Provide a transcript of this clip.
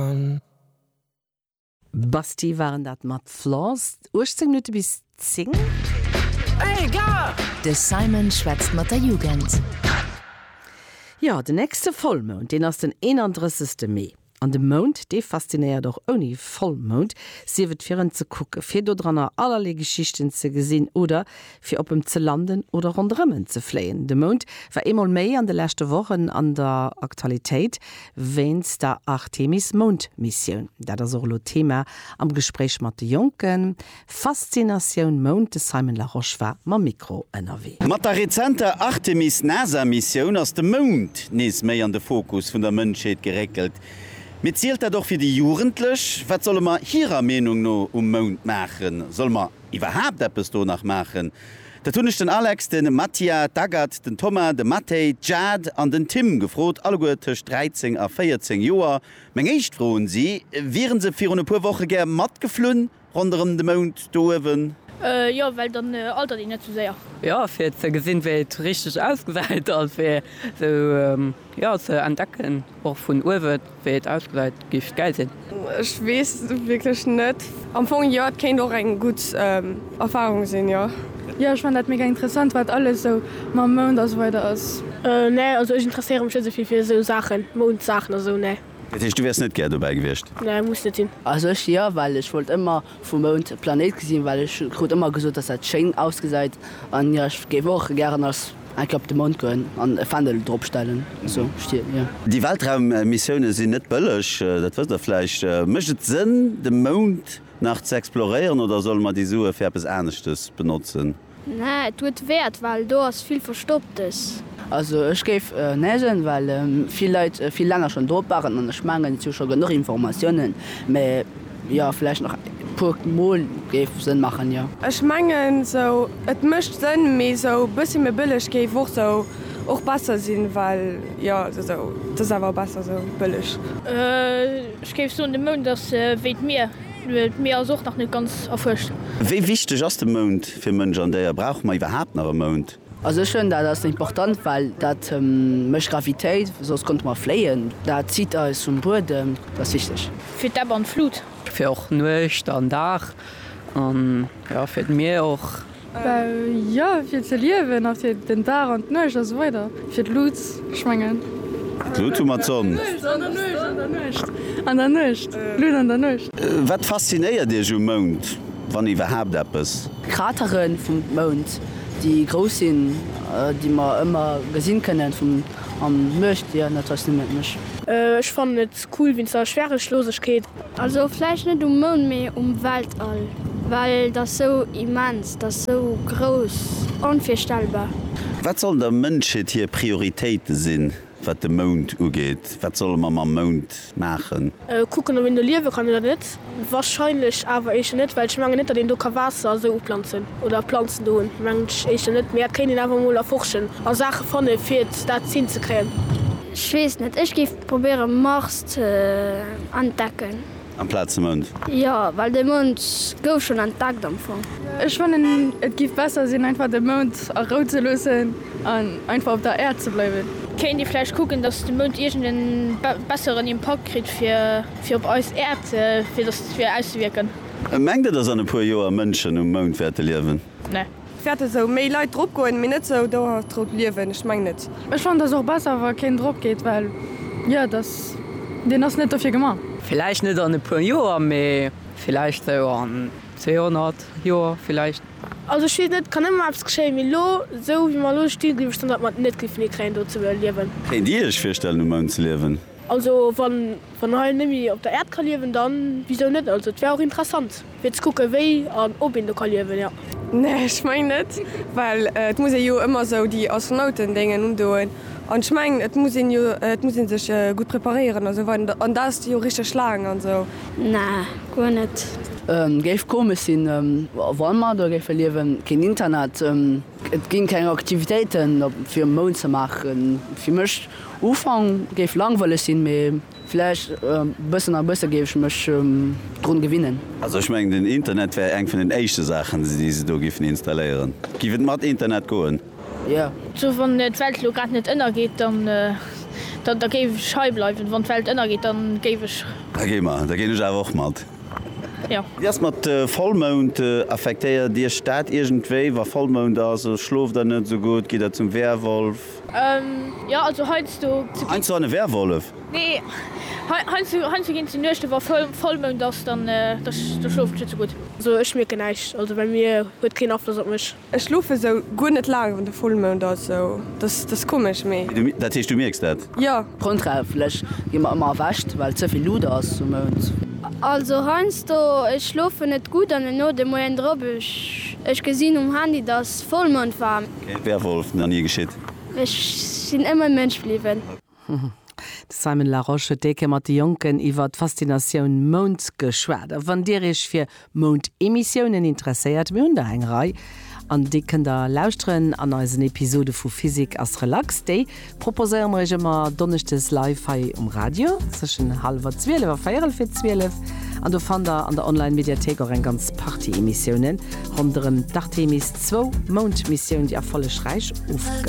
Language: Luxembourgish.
an. Basti waren dat mat Flaws, 18 Minutte bis 10. Hey gars! De Simon schwätzt mat der Jugend. Jo, den nächste Vollmound, deen ass den 31 Mee. An de Mound, dee faszinéiert och ouni Vollmound, sief et fir en ze kucken, fir dodranner allerlee Geschichten ze gesinn oder fir op em ze landen oder ronderëm en ze fléien. De Mound war eemol méi an de leschte Wochen an der Aktualitéit wéinst der Artemis-Moundmissioun. Dat ass och elo d'Thema am Gespréich mat de Jonken. Faszinatioun Mound, de Simon Larosche war mam Mikro ënnerwee. Mat der rezenter Artemis-NASA-Missioun ass de Mound nees méi an de Fokus vun der Mënschheet geréckelt. Mee zielt dat och fir déi Jugendlech? Wat solle mer hirer Meenung no um Mound maachen? Solle mer iwwerhaapt eppes do nach maachen, dat hunn ech den Alex, de Mattia, d'Agathe, den Thomas, de Mathey, d'Jade an den Tim gefrot, alleguer tëscht 13 a 14 Joer. Meng éischt Fro un si, Wieren se virun e puer Woche gär matgeflunn ronderëm de Mound do uewen? Jo, well dann altert een net sou séier. Jo, fir ze gesinn, wéi et richteg ausgesäit a fir esou ze entdecken, och vun uewen. Wéi et ausgesäit géif et gäil sinn. Ech weess wierklech net. Am Fong jo, et kéint och eng gutt Erfarung sinn, jo. Jo, ech fannen dat mega interessant, wat alles sou mam Mound a sou weider ass. Nee, also ech interesséiere mech net esou vill fir esou Saachen, Moundsaachen a sou, nee. Dat heescht, du wäers net gär dobäi gewiescht? Nee, muss net sinn. Also ech jo, well ech wollt ëmmer Vum Mound d'Planéit gesinn, well ech krut ëmmer gesot, dass dat schéin ausgesait, an jo ech géif och gären als eng Kéier op de Mound goen an e Fändel drop stellen, sou stien jo. Déi Weltraummissioune sinn net bëlleg, dat wësst der vläicht. Mécht et Sënn de Mound nach ze exploréieren oder solle mer déi Sue fir eppes aneschtes benotzen? Nää et huet Wäert well do ass vill Verstopptes. Also ech géif nägen well vill Leit vill länger schon drop waren an ech mengen et si scho genuch Informatiounen mä jo vläicht nach e puer mol géif Sënn machen jo. Ech mengen sou et mécht Sënn mee sou bëssi méi bëlleg géif och sou och besser sinn well jo sou et ass awer besser sou bëlleg. Ech géif soen de Mound ass wéi d'Mier. D'Mier ass och nach net ganz erfuerscht. Wéi wichteg ass de Mound fir Mënsch an Déier? Brauche mer iwwerhaapt nach e Mound? Also ech fënn dat ass important, well dat mécht Gravitéit, soss konnte mer fléien. Dat zitt eis vum Buedem, dat ass wichteg. Fir d'Ebb an d'Flut. Fir och Nuecht an Dag an jo fir d'Mier och. Jo, fir ze liewen a fir den Dag an d'Nuecht a sou weider. Fir d'Lut, ech mengen. D'Lut hu mer, d'Sonn. D'Lut an der Nuecht, an der Nuecht, an der Nuecht, d'Lut an der Nuecht. Wat faszinéiert Iech um Mound, wann iwwerhaapt eppes? D'Kratere vum Mound, déi grouss sinn, déi mer ëmmer gesinn kënnen vum an Nuecht. Jo, dat faszinéiert mech. Ech fannen et cool wéinst der Schwärelchlosegkeet. Also vläicht net um Mound, mee um Weltall, well et ass sou immens, et ass sou grouss, onvirstellbar. Wat sollen der Mënschheet hir Prioritéite sinn, wat de Mound ugeet? Wat solle mer mam Mound maachen? Kucken, ob een do liewe kann oder net. Warscheinlech awer éischter net, well ech mengen net, datt een do ka Waasser a sou uplanzen oder Planzen do hunn, mengen ech éischter net. Mee dat kéint een awer emol erforschen a Saache fanne fir et dat hinzekréien. Ech weess net, ech géif Probéiere Mars ze entdecken. Amplaz de Mound? Jo, well de Mound gouf schonn entdeckt am Fong. Ech fannen et giff besser sinn einfach de Mound a Rou ze loossen an einfach op der Äerd ze bleiwen. Kéint ee vläicht kucken dass de Mound iergend en besseren Impakt kritt fir op eis Äerd fir dass fir auszewiirken. Mengt der dass an e puer Joer Mënschen um Mound wäerte liewen? Nee. Wäert esou méi Leit drop goen, mee net sou dauerhaft drop liewen. Ech mengen net. Ech fannen dass och besser wa keen drop geet well jo dass deen ass net dofir gemaach. Villäicht net an e puer Joer, mee villäicht sou an 200 Joer villäicht. Also ech wees net, kann ëmmer eppes geschéien, mee lo sou wéi mer lo sti gleef ech dann dat mer net giffen hikréien do ze liewen. Kéint dir iech virstellen um Mound ze liewen? Also wann wann hei némmi op der Äerd ka liewen, dann wisou net? Also et wär och interessant fir ze kucken wéi an ob een do ka liewen, ja. Nee ech meng net, well et muss ee jo ëmmer esou déi Astronauten Déngen undoen an ech meng et muss een jo et muss een sech gutt preparéieren a sou weider an dat ass jo richteg laang an sou. Nee guer net. Géif komesch sinn wann mer do géife liewen. Keen Internet, et gi keng Aktivitéiten op fir um Mound ze maachen fir mech. Ufank géif langweileg sinn, mee vläicht bëssen a bësse géif ech mech drun gewinnen. Also ech mengen den Internet wär eng vun den éischte Saachen déi se do giffen installéieren. Giff et mat Internet goen? Jo. Also wann d'Welt elo grad net ënnergeet dann da géif ech hei bleiwen. Wann d'Welt ënnergeet dann géif ech. Da gi mer, da ginn ech awer och mat. Jo. Wéi ass mat Vollmound? Affektéiert iech dat iergendwéi wa Vollmound ass? Schlooft der net esou gutt? Gitt der zum Werwolf? Jo, also heiansdo. Heiansdo an e Werwollef? Nee, heiansdo ginn et sou Nuechten, wa Vollmound ass, dann schlofen ech net sou gutt. Also ech mierken näischt, also bei mir huet et keen Afloss op mech. Ech schlofe sou guer net laang wann de Vollmound ass, sou dass dass komesch, mee. Dat heescht du mierks dat? Jo. Grondrechtlich gi mer ëmmer erwächt, well ze vill Luut ass um Mound. Also heiansdo, ech schlofen net gutt an elo de Moien drop, ech gesinn um Handy dass Vollmound war. Kee Werwolf, nach nie geschitt. Ech sinn ëmmer Mënsch bliwwen. De Simon Larosche huet déi Kéier mat de Jonken iwwer d'Faszinatioun Mound geschwat. A wann Dir Iech fir Moundemissionen interesséiert, mir hunn der eng Rei an déi kënnt der lauschteren an eisen Episode vu Physique ass relax, déi Proposéiere mer Iech ëmmer Donneschdes live hei um Radio zwëschen hallwer 12 a véierel fir 12. An do fannt der an der Online-Mediathéik och eng ganz Partie Emissiounen ronderëm d'Artemis-II-Moundmissioun, déi erfollegräich ofgelaf